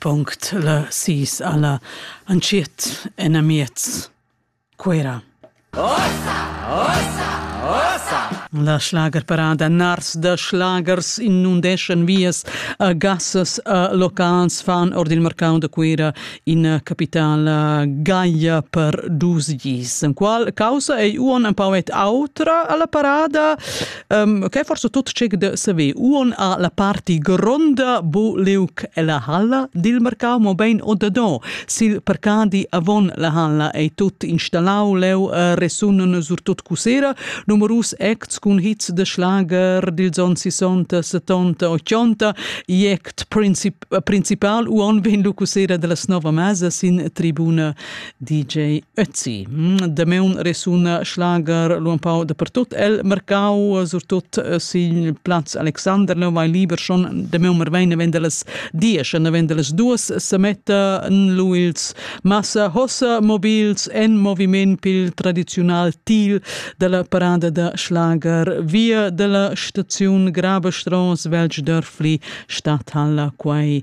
Punct la sis alla antschiet enamiez Cuera. Ossa! Ossa! Ossa! La schlagerparada Nars da Schlagers in inundeschan vias a gassas a locals fan or il mercau da Cuera in capitala Gaia per dus gis. En qual causa ei uon empau et autra alla parada Um, che forse tut cec de saver uon a la parti gronda bo leuc e la halla dil mercau mo bein o de do sil percadi avon la halla ei tut installau leu uh, resunen sur tut cusera numerus acts cun hits de schlager dil zon 60 70 80 i act princip principal uon vin lu cusera de la nova mesa sin tribuna DJ Ötzi. Mm, Dameun resuna schlager lu empau dapertut el mercau, surtut eh, sil plaz Alexander, neu vai liber schon dameun merveine wenn las diesch, wenn las duas semetta en lu ils massa hossa mobils en moviment pil tradizional til dalla parada da schlager via dalla staziun Grabestrauss, Velsch Dörfli, Stadthalle, quai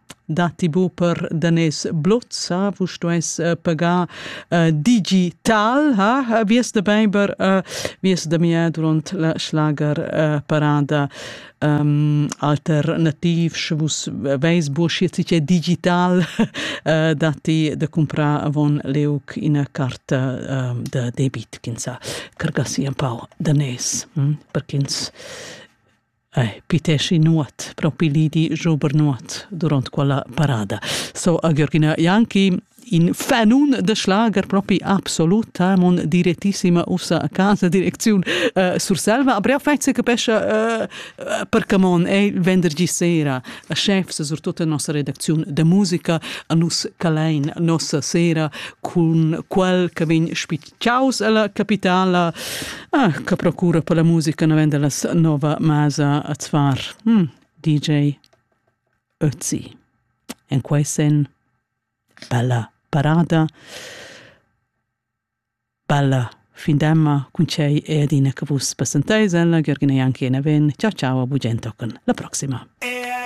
Datti bu per daners blozza, vus stuess uh, pagar uh, digital, ha? Vies da beiber, uh, vies da mia durant la schlager uh, parada um, alternativ, sche vus veis bu schi è digital, uh, datti da comprar avon leuc ina carta uh, da debit, kinsa, cargassi un pau daners, hm? per ch'ins Ei, piteschi nuot, propi li di Jober nuot durant quella parada. So a Georgina Janki in fanun de schlager propi absoluta mon direttissima ussa a casa direcziun uh, Surselva a brea fetze capescia uh, eh, per camon è il vendergi sera a chef se sur tutta nossa redaczione de musica a nus calein nossa sera con quel che vegn Ciaus alla capitala ah, che procura per la musica navenda la nova masa a Zvar. Mm, DJ Ötzi. En quei sen bella parada bella findemma cun cei e adina che vus passenteis ella Gergina Janki e Neven. Ciao ciao a Bugent la prossima.